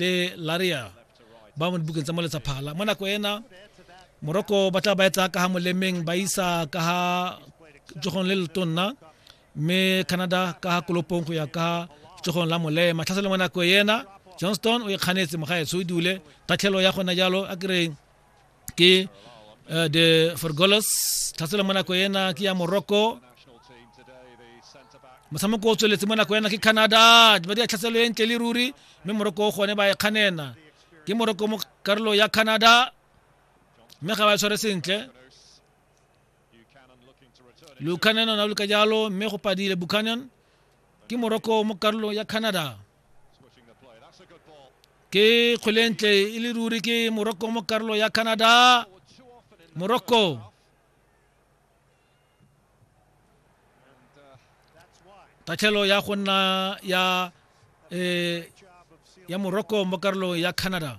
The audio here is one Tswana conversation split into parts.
le laria ba mo dibukeng tsa moletsa phala mo nako ena moroko ba tla ba etsa ka ga molemeng ba isa ka ga tsogong le letonna mme canada ka ga kolopong go ya ka tsogong la molema tlhaselo mo nako ena johnston o ikganetse mogaetsho o dule tatlhelo ya gona jalo a kereng ke uh, de fergolos tlhatsela mo nako ena ke ya morocco motshameko o tsweletse mo nako ena ke canada ba di a tlhatselo e ntle le ruri mme morocco o gone ba e kganena ke morocco mo karolo ya canada mme ga ba tshware sentle lucanon o na luka jalo mme go padile bucanon ke morocco mo karolong ya canada ke kgwelentle e le ruri ke morocco mo karolo ya canada morocco tatlhelo ya go nna ya eh, ya morocco mo karolong ya canada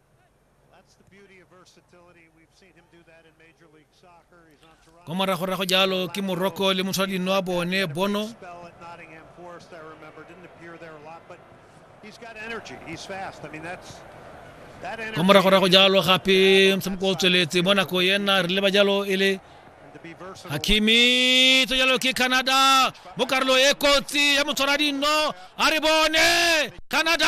kwa moragorago jalo ke morocco le motshwaradino wa bone bono kwa moragorago jalo gape motshameko o tsweletse mo nako ena re leba jalo e le hakimi to jalo ke canada mo karolo e kotsi ya motshwaradino a re bone canada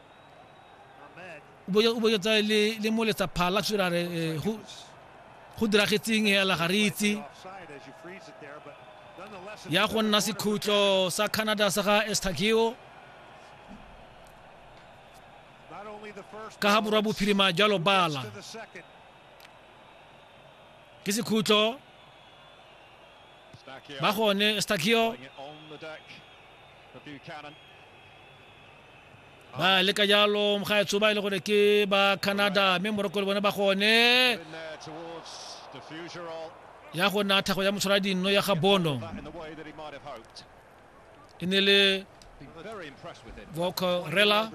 o bo tsa le le mo letsa phala sure re eh, go go diragetseng ya la garitsi ya go nna sekhutlo sa Canada sa ga Estagio ka ga borwa bophirima jalo bala ke sekhutlo ba gone Estagio ba le ka jalo mogaetsho ba e le gore ke ba canada mme moroko le bone ba gone ya go nna tlhago ya motshwara dinno ya ga bono e ne le vocorela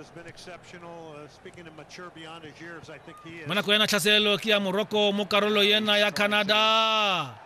mo nako ya natlhaselo ke ya moroko mo karolo ena ya canada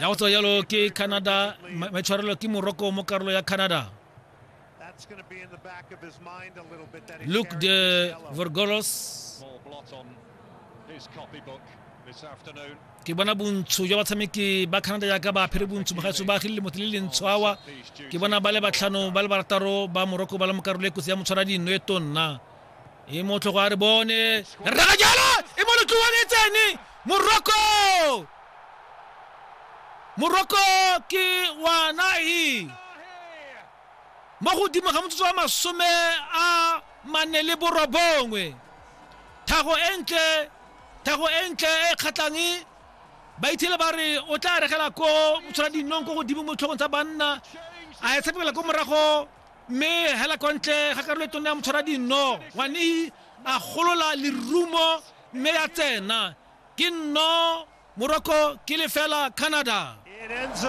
ya go tswa yalo ke canada maitshwarelo ke morocco mo karolo ya canada luke de vorgolos ke bona bontsho jwa batshameki ba canada jaaka ba phele bontsho mogaetso ba agile motho le lentsho awa ke bona ba le batlhano ba le barataro ba morocco ba le mo karolo e kotsi ya motshwara dinno e tonna e motlhogo a re bone raka jalo e mo lotlowane e tsene moroko moroko ke wa nahi mo godimo ga motsotso wa masome a mane le borobongwe thago e ntle thago e ntle e kgatlhang ba ithele ba re o tla regela ko motshwana dinong ko godimo mo tlhogong tsa banna a e tshepegela ko morago mme hela kwa ntle ga karolo e tona ya motshwara dinno ngwanehi a golola lerumo mme ya tsena ke nno moroko ke lefela canada It ends up